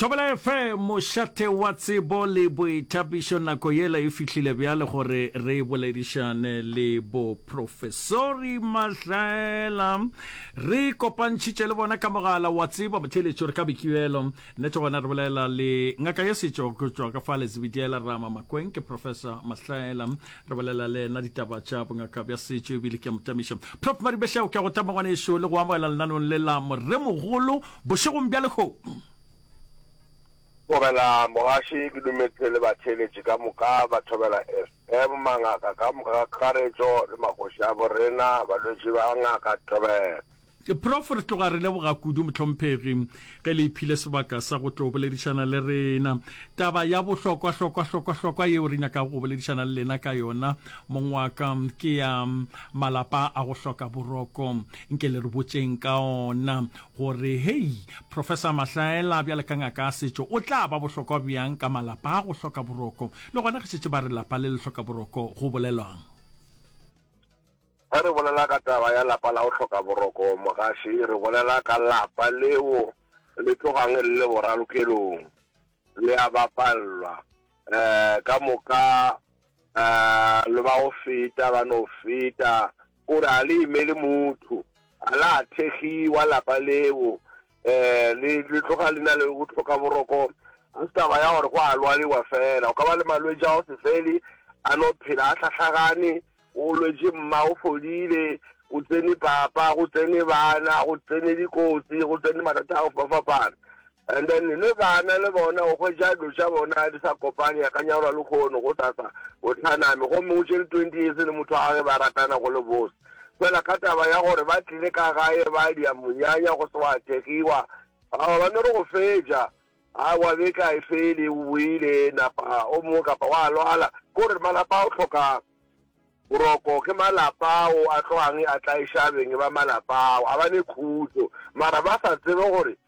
Thobela FM, mošate wa tsebo le boithapišo. Nako yela e fihlile bjale gore re boledišane le boprofesori Mahlaela. Re kopantšhitše le bona ka mogala wa tsebo motheletšo re ka boikielo. Nnete gona re bolela le ngaka ya setšo go tšwa ka fa Lezibediela Rama Makweng, ke Professor Mahlaela. Re bolela le ena ditaba tša bongaka bja setšo ebile ke a motamiša. Prof Maribeshao, ke a go tama ngwaneso le go amogela lenanong le la moremogolo Bošegong bja lehono. Thobela mogaši ke dumetše le batheeletši ka moka ba Thobela FM, mangaka ka moka ka kakaretšo le magoši a bo rena, balwetši ba Ngaka Thobela. Prof. Re tloga re leboga kudu mohlomphegi ge le iphile sebaka sa go tlo boledišana le rena taba ya bohlokwa-hlokwa-hlokwa-hlokwa yeo re nyakago go boledišana le lena ka yona mong wa ka ke ya malapa a go hloka boroko. Nke le re botšeng ka ona gore, Hei, Professor Mahlaela, bjale ka ngaka ya setšo, o tla ba bohlokwa bjang ka malapa a go hloka boroko? Le gona ge šetše ba re lapa le le hloka boroko, go bolelwang? Ge re bolela ka taba ya lapa la go hloka boroko, mogaši, re bolela ka lapa leo le tlogang le le boralokelong, le a bapallwa, um ka moka, um le ba go feta, ba no feta, O re a le imele motho, a la thegiwa lapa leo, um le le tloga le na le go tlhoka boroko. Ga se taba ya gore go a lwaliwa fela, o ka ba le malwetši a go se fele, a no phela a hlahlagane, o lwetše mma o fodile, o tsene papa, go tsene bana, go tsene dikotsi, go tsene mathata a go fapafapana. And then le bana le bona o hwetša dilo tša bona di sa kopane ya ka nyalwa le kgono go sasa o tlhaname gomme o tšere twenty years le motho wa gage ba ratana go le bose fela ka taba ya gore ba tlile ka gae ba dia monyanya go se wa thegiwa aa ba no re go fetša a wa be ka e fele o boile napa o mongwe kapa wa lwala ko re malapa o tlhoka boroko ke malapa o a tlogangwe a tla e shabeng ba malapa a ba ne khutso mara ba sa tsebe gore